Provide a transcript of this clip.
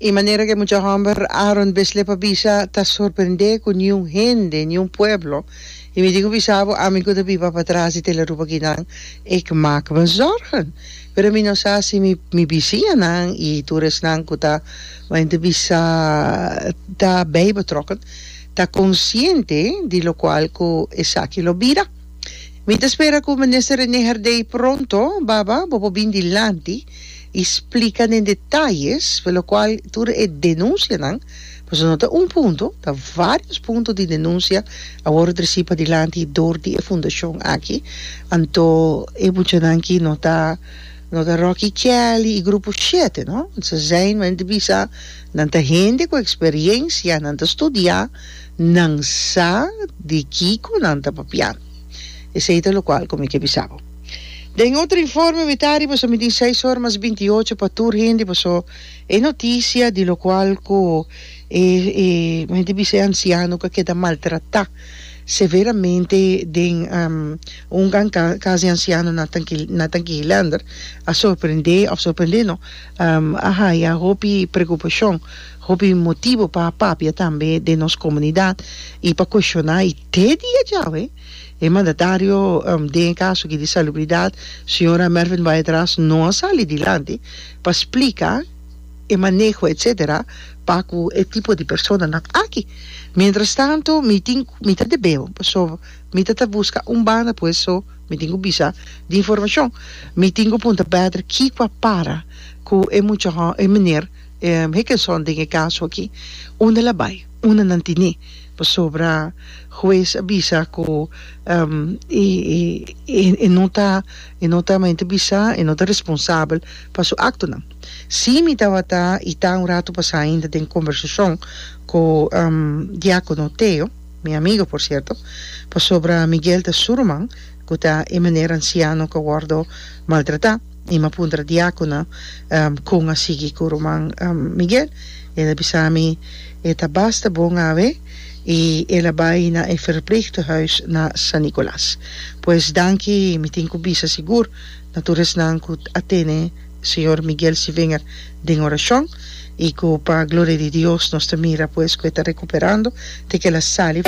I manera ku e mucha hòmber Aaron Beslé pa bisa, ta sorprendé ku niun hende, niun pueblo, i mi tin ku bisa bo, ami ku ta biba patras di Telerup akinan, ec mak me zòrgen. Pero mi no sa si mi mi bisianan i tur esnan ku ta bai ta bisa ta bai betrokken, ta konsiente di lokual ku esaki lo bira. Mi ta spera ku Minister René Herdey pronto, baba, bo por bin dilanti y splica den detalles por lo cual tur e denuncianan, pasobra no ta un punto, ta varios punto di denuncia a worde treci padilanti door di e fundacion aki, anto e muchanan ki no ta no ta Rocky Kelly y grupo siete no, ze zijn men te bisa nan ta hende cu experiencia, nan ta studia, nan sa di kico nan ta papia, esey ta lo cual cu mi ke bisa bo. Den otro informe mitadi paso midí seis or mas binti ocho pa tur hende paso e notisia di locual cu e hende bisa e anciano cu a keda maltratá severamente den un casa di anciano na na Tanquihelander a sorprende of sorprende no a haya hopi preocupacion hopi motibo pa papia tambe den nos comunidad y pa cuestioná y te dia djawe. E mandatario den e kaso aki di salubridat, señora Mervin Baedraas no a sali dilanti pa splika e maneho etsetera pa ku e tipo di personanan aki. Mientrastantu mi tin mi ta debeo paso mi ta ta buska un banda pues so mi tin ku bisa di informashon. Mi tin ku punta Baedraas kiko a para ku e muchahon e meneer Hickenson den e kaso aki. Unda el a bai? Una nan tine pasobra hues a bisa cu e no ta e no ta maente bisa e no ta responsabel pa su actonan. Si mi tabata y ta un rato pasa ainda den conversacion cu Diacono Theo, mi amigo por cierto, pasobra Miguel ta su ruman cu ta e manera anciano cu a wordo maltrata. Mi a puntra diakonan kon a sigui ku ruman Miguel. El a bisa mi e ta basta bon awe i el a bai na e Verpleegtehuis na San Nicolas. Pues danki, mi tin ku bisa sigur na tur esnan ku a tene señor Miguel si vinger den orashon i ku pa gloria di Dios nos ta mira pues ku e ta rekuperando te ku el a sali.